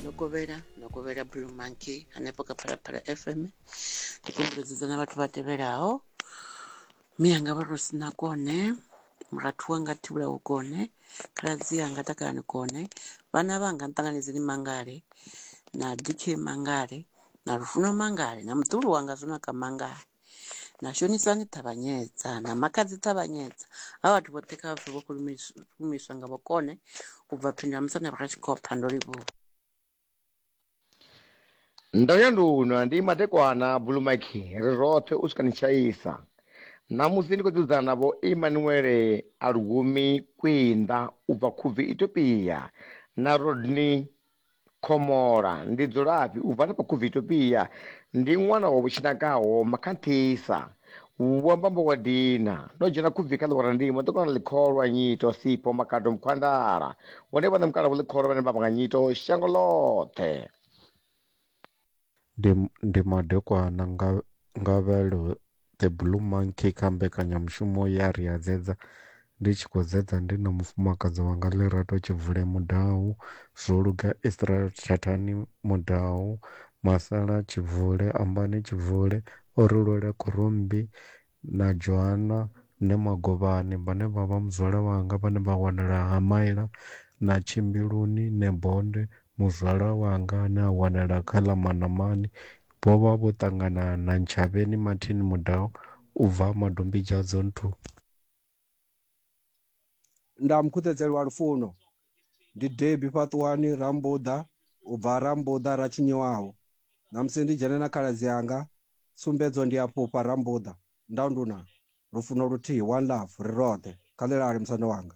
no kovhela no kovhela blue monkey hanefho kha phalaphala fm ndi kumbuledza na vhathu vha tevhelaho miyanga vha ro sina kone murathu wanga thivhula u kone khaladzi yanga takalani kone vhana vhanga nṱanganedzeni mangale na dk mangale na lufuno mangale na muḓulu wanga zwonaka mangale na shonisa ni ṱavhanyedza na makadzi ṱavhanyedza ha vhathu vhoṱhe kha vhathu vho khulumiswa nga vhokone u bva phindula musanda vha kha tshikhopha ndo livhuwa ndo ya ndunwa ndi madekwana bulumaki ri roṱhe u swika ni tshaisa ṋamusi ndi khou dzudzana na vho imanuele a lugumi kwinda u bva khubvi ethiopia na rodney Khomola, Ndi dzulafhi? U bva na vha Khuvitopia. Ndi ṅwana wa vhutshinakaho, Makanthisa. Vho amba mbo wa dina. Ndo dzhena khubvi kha ḽiwara ndimo, ndo kona ḽikholwa, nyito, sipho, makado, mukhwandala. Hone vhaṋe mukalaho ḽikholwa vhane vha vha nga nyito, shango ḽoṱhe. Ndi, ndi madekwana nga, Ngavhelo The Blue Monkey kha mbekanyamushumo ya Ri a Dzedza ndi tshi khou dzedza ndi na mufumakadzi wanga Lerato Tshivule Mudau, zwo luga Israel Thathani Mudau, Masala Tshivule, Ambani Tshivule, o ri lwela khurumbi na Joana ne Magovhani, vhane vha vha muzwala wanga vhane vha wanala ha Maila na Tshimbiluni, ne Bonde, muzwala wanga ane a wanala kha ḽa Manamani, vho vha vho ṱangana na Ntshavheni Martin Mudau u bva Madombidzhadzo Nthuni. Nda mukhuṱhedzeli wa lufuno, ndi Debbie Fhaṱuwani Rambuḓa u bva Rambuḓa ra tshinyiwaho. Ṋamusi ndi dzhene na khaladzi anga, tsumbedzo ndi ya fhufha Rambuḓa, nda nduna, lufuno luthihi, one love, ri roṱhe, kha ḽi lale musanda wanga.